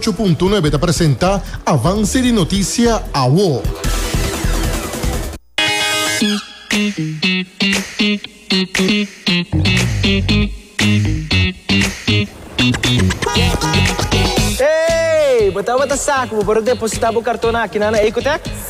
Chu Punto Nuebe ta presenta Avance di Noticia awo. Hey! Bo tabata sa cu bo por a deposita bo carton aki na Ecotech?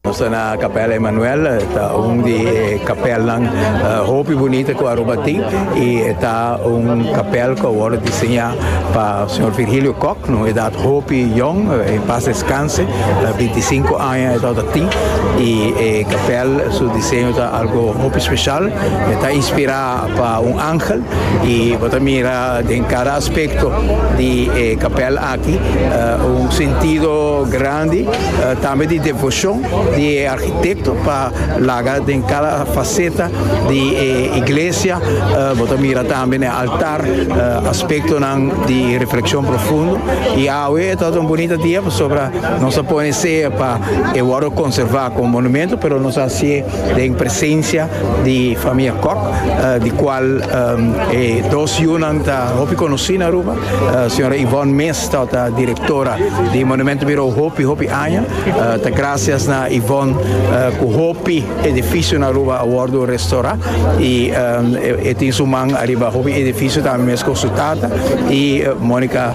Nos ta na Capella Emmanuel, e ta un di e capelnan hopi bunita cu Aruba tin y e ta un capel cu a worde diseña pa Señor Virgilio Kok, na un edad hopi yong, en paz descanse, binti sinku aña e tabata tin y e capel su diseño ta algo hopi special, e ta inspira pa un angel y bo ta mira den cada aspecto di e capel aki. Un sentido grandi tambe di devoshon di e arkitekto pa laga den kada faseta di e iglesia. Bo ta mira tambe na e altar aspektonan di reflekshon profundo. I awe e tabata un bunita dia pasobra nos ta pone seña pa e wòrdu konservá komo monumentu, pero nos a hasié den presensia di famia Kok, di kual e dos yunan ta hopi konosí na Aruba. Señora Yvonne Meester ta directora di Monumento Bureau hopi hopi aña. Ta gracias na Yvonne cu hopi edificio na Aruba a wordo restora y e tin su man ariba hopi edificio tambe mes cu su tata y Monica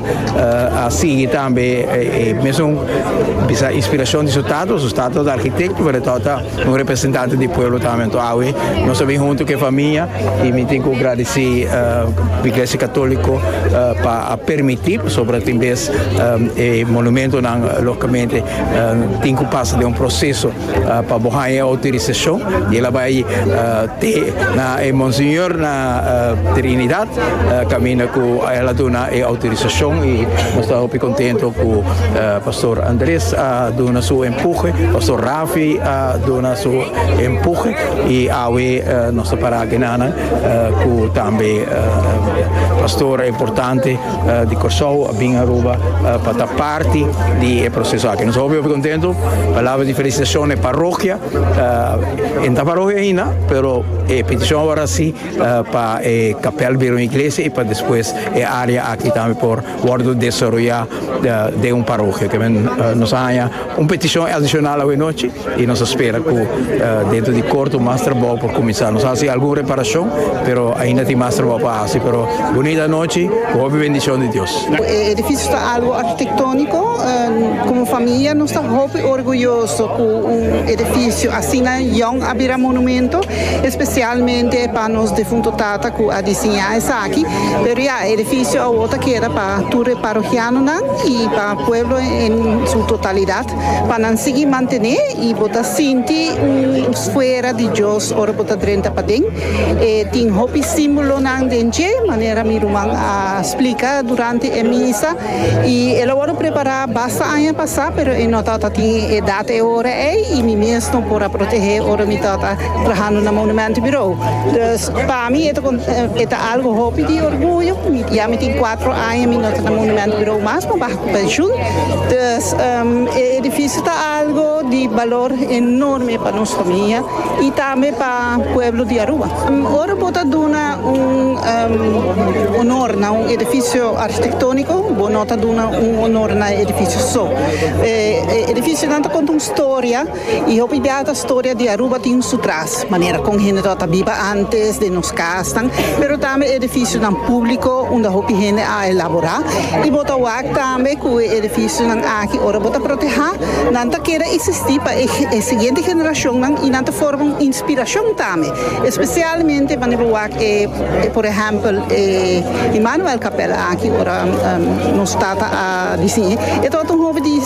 a sigui tambe e mesun bisa inspiracion di su tata, su tata ta architecto pero e tata Un representante di pueblo ta awe awe nos a bin hunto cu e famia y mi tin cu gradeci Iglesia Catolico pa a permiti pasobra tin bes e monumentonan logicamente tin cu pasa den un proceso pa bo haya e autorisacion y el a bay te na e Monseñor na Trinidad caminda cu el a duna e autorisacion y nos ta hopi contento cu Pastor Andres a duna su empuje Pastor Raaf. Fi a duna su empuje y awe nos ta para genanan cu tambe pastor importante di Corsou a bin Aruba pa ta parti di e proceso aki. Nos a hopi hopi contento. Palabra di felicitacion na e parrokia. E no ta parrokia aina pero e peticion awor a si pa e capel bira un iglesia y pa despues e area aki tambe por Wordo desaroyá den un parokia. Te men nos a haña un petishon adishonal awe nochi i nos a spera ku dentro di korto mas trabou por kuminsá. Nos a hasi algun reparashon pero ainda tin mas trabou pa hasi. Pero bunita nochi ku hopi bendishon di Dios. E edifisio ta algu arkitektóniko. Komo famia nos ta hopi orguyoso ku un edifisio asina yòn a bira monumentu, espesialmente pa nos defuntu tata ku a disiñá esaki. aki, pero ya e edificio awor ta keda pa tur e parohianonan y pa pueblo en su totalidad pa nan sigui mantene y bo ta sinti un sfera di Dios ora bo ta drenta paden. E tin hopi simbolonan den dje, manera mi ruman a splica durante e misa y el a wòrdu prepara basta aña pasa, pero e no ta ta tin e edad e ora ei y mi mes no por a protege ora mi ta ta trahando na Monumentenbureau. Pa mi e ta algo hopi di orguyo. Ya mi tin cuatro aña mi no ta na Monumento Birou mas, mi baha cu pensioen. Dus e edificio ta algo di balor enorme pa nos famia y tambe pa pueblo di Aruba. Ora bo ta duna un honor na un edificio architectonico, bo no ta duna un honor na e edificio so. E edificionan ta conta un storia. Y hopi bia ta storia di Aruba tin su tras, manera con hende ta ta biba antes, den nos casnan, pero tambe edificionan publico unda hopi hende a elabora. Y bo ta wak tambe cu e edificionan aki ora bo ta proteha, nan ta keda existi pa e e siguiente generacionnan y nan ta forma un inspiracion tambe, especialmente wanneer bo wak e e por ehempel e Immanuelkapel aki ora nos tata a diciñe, e tabata un hopi di.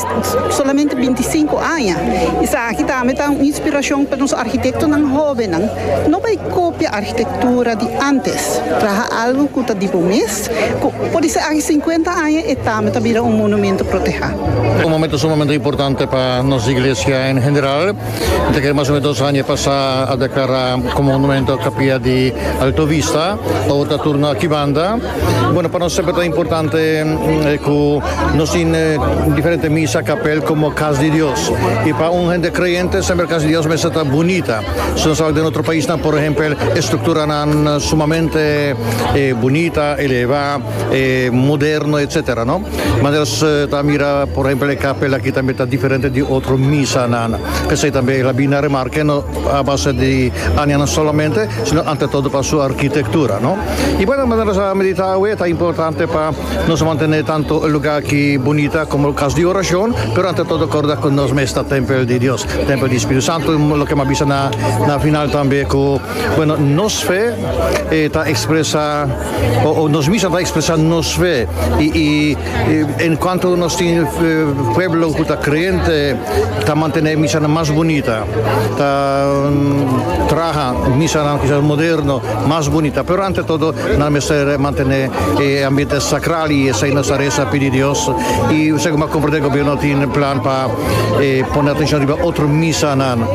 Solamente binti i sinku aña. Esaki tambe ta un inspirashon pa nos arkitektonan hóbennan. No bai kopia arkitektura di ántes. Traha algu ku ta di bo mes, ku por di saki sinkuenta aña e tambe ta bira un monumentu protehá. Un momentu sumamente importante pa nos iglesia en general. Ta kere mas o menos dos aña pasá a deklará komo monumentu kapia di Alto Vista. Awor ta turno akí banda. Bueno, pa nos semper ta importante cu nos tin diferente misa, capel como Cas di Dios. Y pa un hende creyente semper Cas di Dios mester ta bunita. Si nos tabata den otro paisnan, por ehempel, e structuranan sumamente bunita, eleva, moderno, etcetera, no? Manera nos ta a mira, por ehempel, e capel aki tambe ta diferente di otro misanan. P'esei tambe el a bini a remarca, no a base di añanan solamente, sino ante todo pa su arquitectura, no? Y bueno, manera nos a medita awe, ta importante pa nos mantene tanto e lugar ki bunita como cas di oracion, pero ante todo corda cu nos mes ta tempel di Dios, tempel di Spiritu Santo, loke bo a bisa na na final tambe cu, bueno, nos fe ta expresa o nos misa ta expresa nos fe y y. En cuanto nos tin pueblo cu ta creente ta mantene e misanan mas bunita, ta traha misanan kisas moderno mas bunita, pero ante todo nan mester mantene e ambiente sacral y esai nos ta reza pidi Dios y segun bo a comprende gobierno tin plan pa pone atencion riba otro misanan.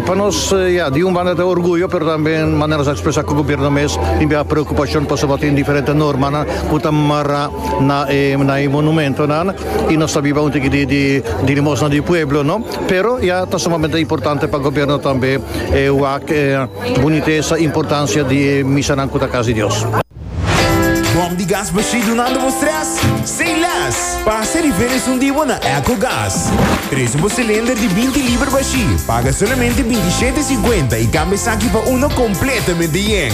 Pa nos ya di un banda ta orguyo pero tambe manera nos a expresa cu gobierno mes tin bira preocupacion pasobra tin diferente normanan. ku ta mara na e na e monumentonan i nos ta biba un tiki di di di limosna di pueblo no pero ya ta sumamente importante pa gobierno tambe e wak e bunitesa importancia di e misanan ku ta kas di Dios. Bòm di gas Bashir dunando bo strès? Sin lès! Pasa riba e resun di bo na Ecogas. Trese bo silinder di binti liber Bashir, paga solamente binti shete e siguenta i kambia esaki pa uno kompletamente yen.